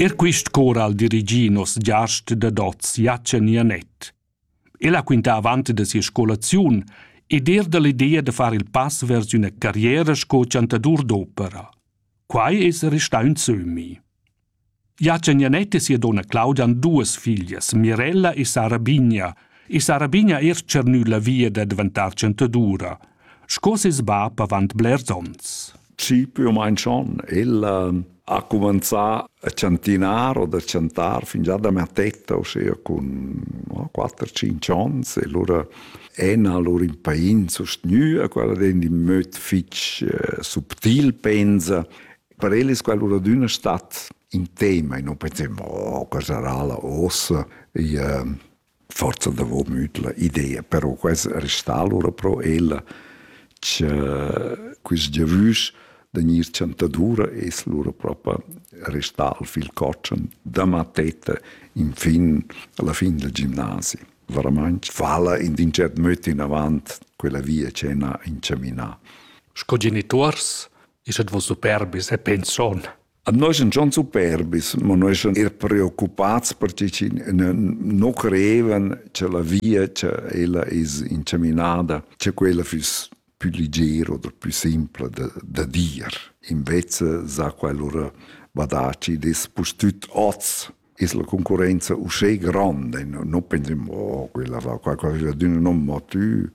Er quist cor al dirigi nos giast da dots Jachen Janet. El ha quintà avant da sia scolaziun ed er da l'idea da far il pass vers üna carriera sco chantadur d'opera. Quai es restà ün sömmi. Jachen Janet e sia donna Claudia han duas figlias, Mirella e Sara Bigna, e Sara Bigna er tschernü la via da daventar chantadura – sco ses bab avant blers onns. Chi più o meno schon, el ha cominciato a chantinar o da chantar fin già da mattetta, ossia con 4-5 onns, e allora ena lur impain sustgnüa, quella den in möd fich eh, subtil, pensa. Per el es quella adüna stat in tema e non pensem, oh, cosa sarà la ossa? E, eh, forsa davo müdla idea, però quai restà alura pro ella cha quist giavüsch da gnir chantadura es lura propa restà al fil cotschen da mattetta infin alla fin del gimnasi. Veramaing fa'la in ün tschert möd inavant quella via ch'el n'ha inchaminà. Sco genituors es ed voss superbis e pension Noi sun schon superbis, ma noi sun eir preoccupats per chi chi nu creevan cha la via cha ella es inchaminada, cha quella füss pü liger oder pü simpla da, da dir. Invece s'ha quel lura badà chi'd es pustüt hoz es la concurrenza uschè grande, non pendiamo quella va qua, quella d'una non mo tu,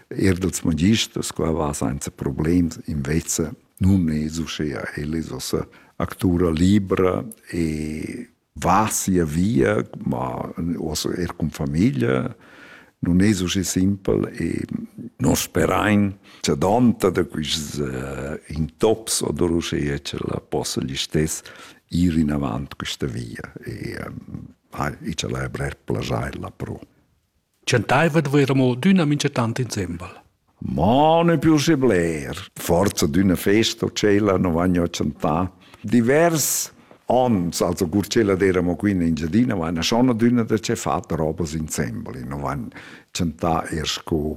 er dels magisters qua va senza problems, invece nun es uschea, el es ossa actura libra e va sia via, ma ossa er con famiglia, non es uschi simpel e nos sperain cha donta da quists uh, intops odur uschea che la possa gli stess ir inavant questa via e ha i chalai brer plajaila pro. Chantaiva dvaira mo d'üna minchatant insembel. Ma ne più se bler. Forza d'una festa cella non vagno a chantare. Divers ons, also cur cella d'eramo qui in Engiadina, va una sona d'una da ce fat robas insembel, non van chantar er sco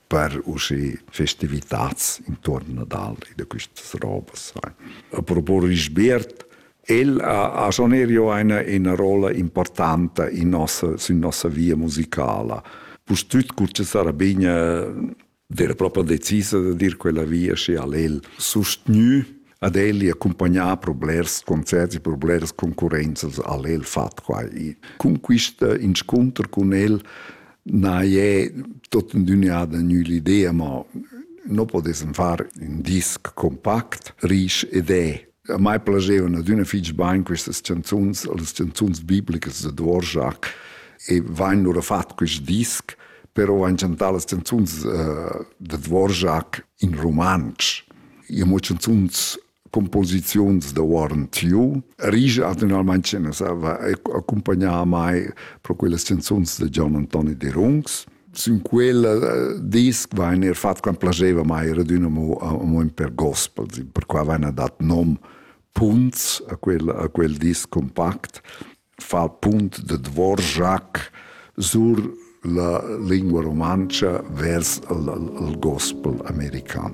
per usche festivitats intorn Nadal e da quistas robas. Apropos Risbert, El ha, ha schon erio eine, eine rolla importante in nossa, in nossa via musicala. Pustüt Cuccia Sarabigna era proprio decisa da dir quella via sche al el sostgnü ad el e accompagnar per blers concerts e per blers concurrenzas al el fat quai. E cun questa inscunter con el na è tot in düniada l'idea, ma non potessem far un disc compact, riche ed è. A mai piacevano d'una fitch bain queste canzons, le canzons biblicas de Dvorak, e vanno loro fatto questo disc, però van cantar le canzons uh, de Dvorak in romansch. Imo chanzuns composiziuns da Warren Tiu rige attualmente ce ne sava accompagnare mai pro quelle canzons de Gian Antoni de Rungs sin quel eh, disc va in er fat quan placeva mai raduna mo mo in per gospel per qua vana dat nom punts a quel a quel disc compact fa punt de Dvorak sur la lingua romancia vers il, il gospel american